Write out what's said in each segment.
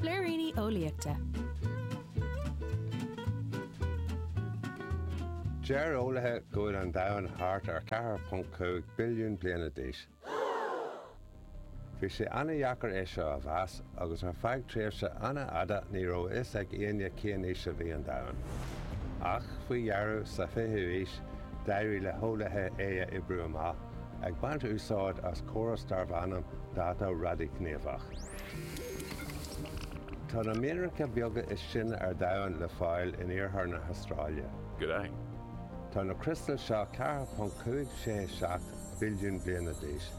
Blúiríní Eolaíochta. Deir eolaithe go bhfuil an domhan thart ar 4.5 billiún bliana d'aois. Bhí sé an-deacair é seo a mheas agus ar feadh tréimhse an-fhada ní raibh a fhios ag éinne cén aois a bhí an domhan. Ach, faoi dheireadh, sa 20ú haois, d'éirigh le heolaithe é a oibriú amach. Ag baint úsáid as córas darb ainm dátú radaighníomhach. Tá na mianracha beaga is sine ar domhan le fáil in iarthar na hAstráile. Gráin. Tá na criostail seo 4.567 billiún bliana d'aois.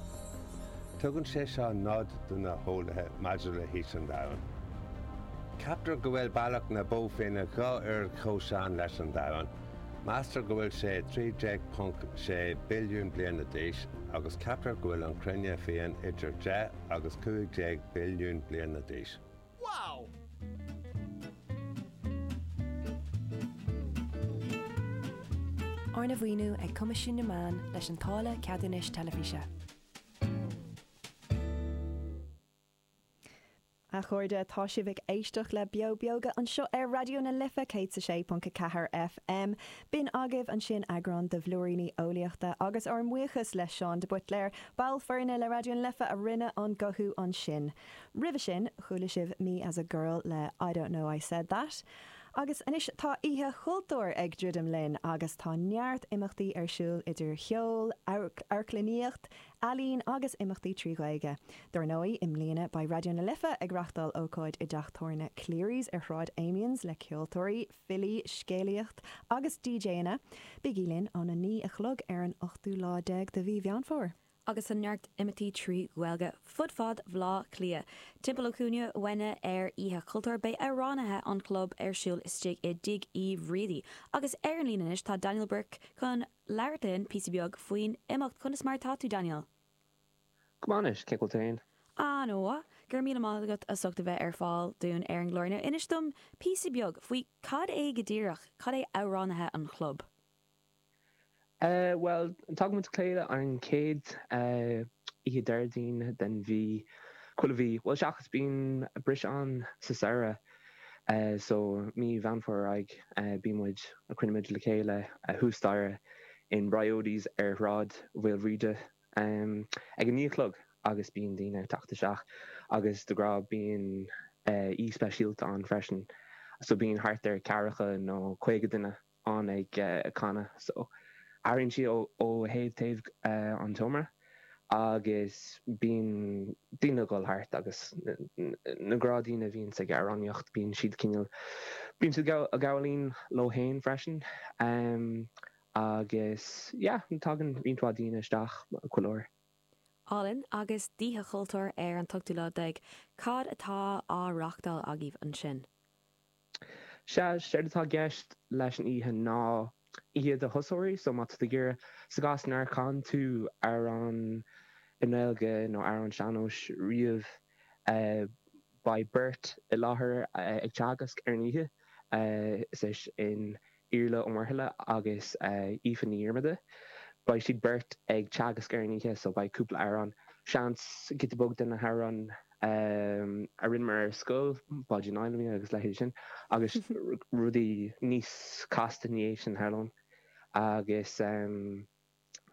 Tugann sé seo nod do na heolaithe maidir le haois an domhain. Ceaptar go bhfuil Bealach na Bó Finne dhá uair chomh sean leis an domhan. Meastar go bhfuil sé 13.6 billiún bliana d'aois, agus ceaptar go bhfuil an Chruinne féin idir deich agus cúig déag billiún bliana d'aois. Wow! Arna mhaoiniú ag Coimisiún na Meán leis an táille Ceadúnais Teilifíse. A chairde, tá sibh ag éisteacht le Beo Beoga anseo ar Raidió na Life 106.4 FM. B'in agaibh ansin eagrán de Bhlúiríní Eolaíochta agus ár mbuíochas le Seán de Buitléar, ball foirne le Raidió na Life a rinne an guthú ansin. Roimhe sin, chuala sibh Me as a Girl le I Don't Know I Said That. Agus anois, tá Oíche Chultúir ag druidim linn agus tá neart imeachtaí ar siúl idir cheol, amharclannaíocht, ealaín agus imeachtaí trí Ghaeilge. Dar ndóigh, i mbliana beidh Raidió na Life ag reáchtáil ócáid i dteach tabhairne Cleary's ar Shráid Amiens le ceoltóirí, filí, scéalaíocht agus DJanna. Bígí linn ón 9 a chlog ar an ochtú lá déag de mhí Mheán Fómhair. agus tá neart imeachtaí trí Ghaeilge fud fad Bhleá Cliath. Timpeall an chúinne uainne ar Oíche Chultúir beidh amhránaithe an Chlub ar siúl istigh i dTigh Uí Bhriaidí agus ar an líne anois tá Daniel Burke chun labhairt linn píosa beag faoin imeacht. Conas mar atá tú, Daniel? Go maith anois, cén chaoi a bhfuil tú féin? An-mhaith. Go raibh míle maith agat as ucht a bheith ar fáil dúinn ar an gclár. Now, inis dom píosa beag faoi cad é go díreach, cad é amhránaithe an chlub? Eh, bhuel, tagann muid le chéile ar an chéad oíche Déardaoin den mhí, chuile mhí, bhuel, seachas bíonn briseadh ann sa samhradh. So, mí Mheán Fómhair ar aghaidh, bíonn muid, cruinníonn muid le chéile thuas staighre in Briody's ar Shráid Mhaoilbhríde ag a naoi a chlog agus bíonn daoine ag teacht isteach agus de ghnáth bíonn aoi speisialta ann freisin. So bíonn thart ar ceathracha nó caoga duine ann ag canadh so airíonn siad ó thaobh taobh an tseomra agus bíonn daoine a dhul thart agus na gnáthdhaoine a bhíonns ag amhránaíocht bíonn siad cineál bíonn siad ag gabháil fhoinn leo féin freisin agus yeah tagann roinnt mhaith daoine isteach chuile uair. Álainn agus d'Oíche Chultúir ar an t-ochtú lá déag, cad atá á reachtáil agaibh ansin? Sea, séard atá i gceist leis an oíche ná oíche do thosóirí, so má tá tú ag iarraidh, sa gcás nár chan tú amhrán i nGaeilge nó amhrán sean-nóis riamh, beidh beirt i láthair ag teagasc ar an oíche, is é sin. Iarla Ó Muirthile agus Aoife Ní Dhiarmada. Beidh siad beirt ag teagasc ar an oíche so beidh cúpla amhrán, seans, giota beag de na hamhráin a rinneamar ar scoil, Báidín Fheilimí agus leithéid sin agus rudaí níos casta ina dhiaidh sin tharlóinn. Agus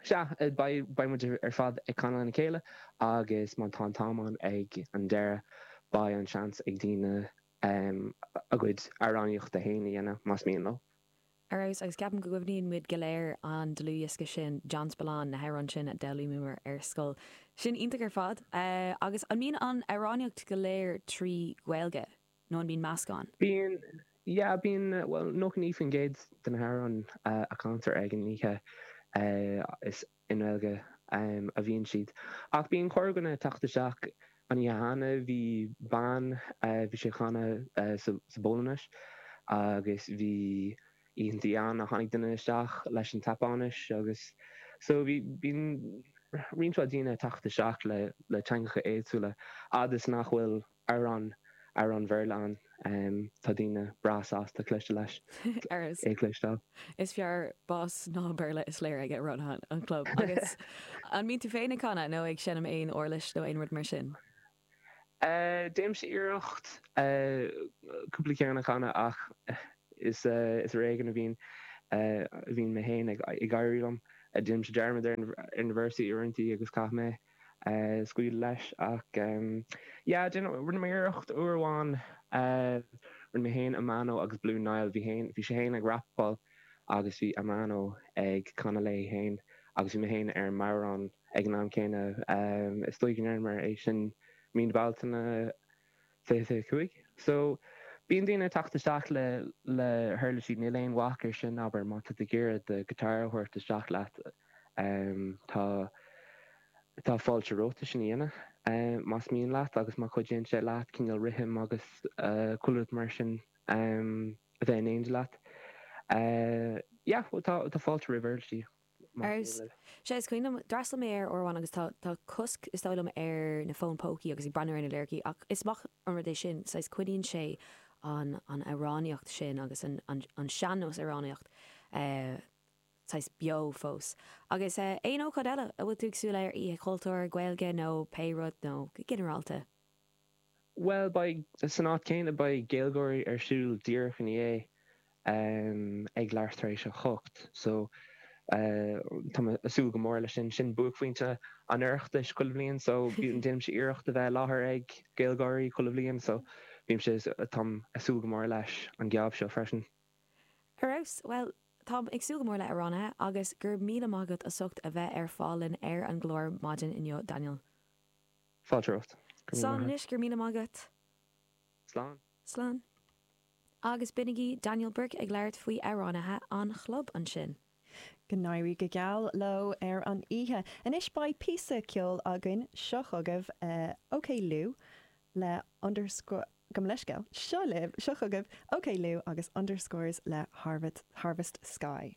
sea, beidh muid ar fad ag canadh lena chéile agus má tá an t-am ann ag an deireadh beidh an seans ag daoine um a gcuid amhránaíochta féin a dhéanamh, más mian leo. ar fheabhas agus ceapaim go gcuimhníonn muid go léir an dlúthdhiosca sin John Spillane, na hamhráin sin a d'fhoghlaímíomar ar scoil. Sin iontach ar fad. Agus an mbíonn an amhránaíocht go léir trí Ghaeilge nó an mbíonn meascán? Bíonn, yeah, bíonn, bhuel, nócha naoi faoin gcéad de na hamhráin a chantar ag an oíche is. I nGaeilge a bhíonn siad. Ach bíonn corrdhuine ag teacht isteach. An oíche cheana bhí bean, bhí sí ag canadh sa bPolainnis agus bhí oícheanta ann a tháinig duine isteach leis an tSeapáinis agus so bíonn roinnt mhaith daoine ag teacht isteach le teangacha éagsúla a fhad is nach bhfuil ar an, ar an Bhéarla an, tá daoine breá sásta cloiste leis, é a chloisteáil. Is fearr bás ná Béarla is léir ag roinnt den, an chlub agus An mbíonn tú féin ag canadh nó ag seinm aon uirlis nó aon rud mar sin? Déanaimse iarracht cúpla ceann a chanadh ach is, is ar éigean a bhíonn, a bhíonn mé féin ag, ag éirí liom. Déanaimse dearmad ar na, ar na véarsaí uaireantaí agus caithfidh mé scaoileadh leis ach yeah déanamh rinne mé iarracht uair amháin rinne mé féin Amano agus Blue Niall bhí féin bhí sé féin ag rapáil agus bhí Amano ag canadh léi féin agus bhí mé féin ar an mbodhrán ag an am céanna is dóigh go ndearnamar é sin mí na Bealtaine 25. So, bíonn daoine ag teacht isteach le, le huirlisí, níl aon bhac ar sin, abair, má tá tú ag iarraidh do guitar a thabhairt isteach leat, tá, tá fáilte romhat é sin a dhéanamh, más mian leat agus má chuidíonn sé leat cineál rithim agus chuile rud mar sin a bheith in éineacht leat, yeah, tá, tá fáilte roimh uirlisí. Ar, sea, is cuimhin liom, d'fhreastal mé air uair amháin agus tá, tá cosc is dóigh liom ar na fóin pócaí agus ag breathnú ar na liricí ach is maith an rud é sin, saghas coinníonn sé an, an amhránaíocht sin agus an, an, an sean-nós amhránaíocht eh saghas beo fós. Agus eh aon ócáid eile a bhfuil tú ag súil leis ar, Oíche Chultúir, Gaeilge nó pé rud nó go ginearálta? Bhuel, beidh, san áit chéanna, beidh Gaylgeoirí ar siúl díreach ina dhiaidh ag leathuair tar éis a hocht so tá mé ag súil go mór leis sin. Sin buaicphointe an Oireachtais chuile bhliain so déanaimse iarracht a bheith i láthair ag Gaylgeoirí chuile bhliain so bímse, táim ag súil go mór leis an geábh seo freisin. Ar fheabhas, bhuel, táim ag súil go mór le hAmhránaithe agus go raibh míle maith agat as ucht a bheith ar fáil linn ar an gclár maidin inniu, Daniel. Fáilte romhat. Go raibh maith Slán a't. anois, go raibh míle maith agat. Slán. Slán. Agus b'in é Daniel Burke ag labhairt faoi amhránaithe an chlub ansin. Go n-éirí go geal leo ar an oíche. Anois beidh píosa ceoil againn. Seo chugaibh OK Liú le Underscore, gabh mo leithscéal, seo libh, seo chugaibh OK Liú agus Underscores le Harvest Sky.